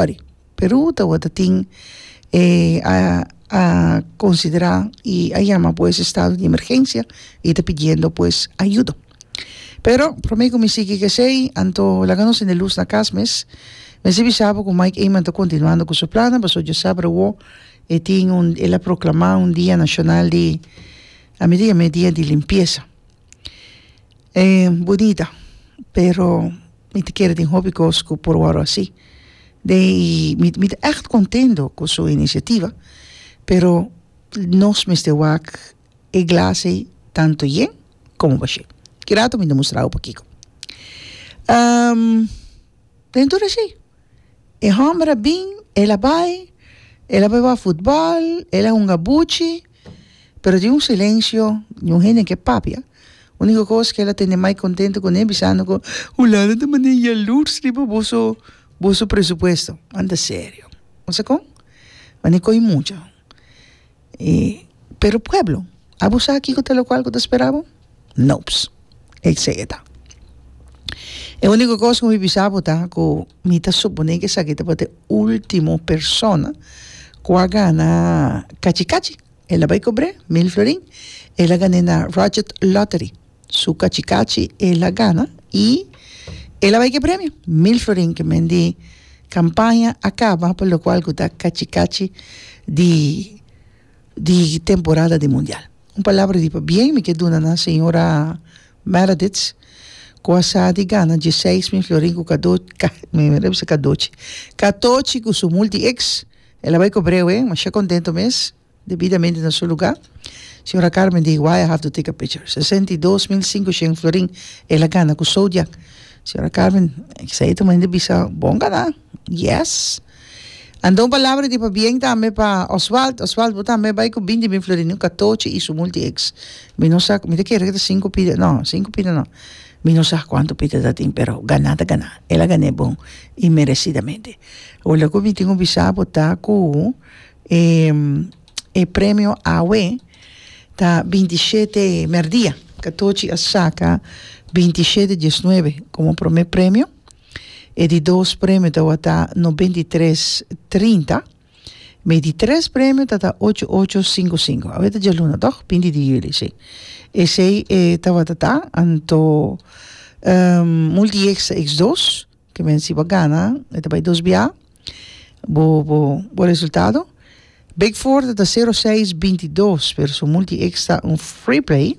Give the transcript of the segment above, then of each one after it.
Sorry. Peru ta wòrdu tin e a konsiderá i a yama pues estado di emergensia i ta pidiendo pues ayudo. Pero promé ku mi sigui k'esei anto laga nos tende lus na kas mes. Mester bisa bo ku Mike Eman ta kontinuando ku su plannan pasobra Dios sa bruwo e tin un el a proklamá un dia nashonal di, ami ta yam'e dia di limpiesa. e budita pero mi ta kere tin hopi kos ku por wòrdu asi de mi ta ègt kontento ku su inisiativa pero nos mester wak e glas ei tantu yen komo bashe kirato mi ta mustra bo pokiko den tur esei e hòmber a bin el a bai el a bai wak futbòl el a hunga buchi. Pero di un silencio di un hende ke papia, unico cos ke lo tende mai contento cune bisando cu hulanda ta manda yalurs riba boso boso presupuesto, anda serio, bo sa con? Mane coy mucha, y pero pueblo, abo sa kico ta locual cu ta spera bo? Nops. E kse ke ta. E uniko kos ku mi bisa bo ta ku mi ta suponé ku esaki tabata e último persona ku a gana kachi kachi. El a bai kubr'é mil florin. El a gan'é na Rogert Lottery. Su kachi kachi el a gana i el a bai ku e premio, mil florin ku men di kampaña a kaba pa lokual ku ta kachi kachi di di temporada di mundial. Un palabra di pabien mi ke duna na señora Meredith ku a sa di gana dieseis mi florin ku kadochi katochi ku su multi ex el a bai ku breu e masha kontento mes debidamente na su luga señora Carmen di why i have to take a picture sesenta i dos mil sinku shen florin el a gana ku soudia señora Carmen esei ta mainda bisa bon gana. Yes. Anda un palabra di pabien tambe pa Oswald. Oswald, bo tambe bai ku bin di bin Florin un katochi i su multi eks. Mi no sa, mi ta kere ku ta sinku pida, no, sinku pida no. Mi no sa kuantu pida ta tin, pero ganá ta ganá. El a gan'é bon i meresidamente. Wou la ku mi tin ku bisa bo ta ku e e premio awe ta binti shete merdia. Katochi a saka binti shete diesnuebe komo promé premio. E di dos premio tawata no binti tres trinta. Me di tres premio tata ocho ocho cinco cinco. A weta dje luna toch? Binti di juli, sí. E sei e tawata ta anto um, multi extra ex dos. Ke men si bo gana, e ta bai dos bia bo, bo, bo resultado. Big four tata sero seis binti dos, pero su multi extra un free play.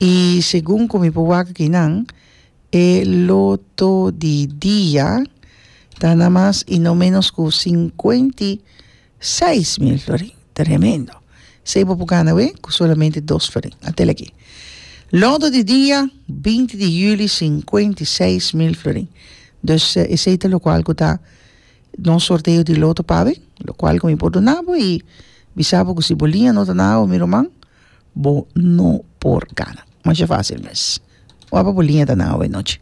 I segun ku mi por wak aki nan e loto di dia ta na mas i no menos ku sinkuenta i seis mil florin. Tremendo. Esei bo por gana awe ku solamente dos florin. A tel aki. Loto di dia binti di yuli sinkuenta i seis mil florin. Dus esei ta lokual ku ta nos sorteo di loto pabe lokual ku mi por duna bo i bisa bo ku si bo liña no ta na awe mi ruman Bo no por gana. Masha facil mes. Wap'a bo liña ta nan awe nochi.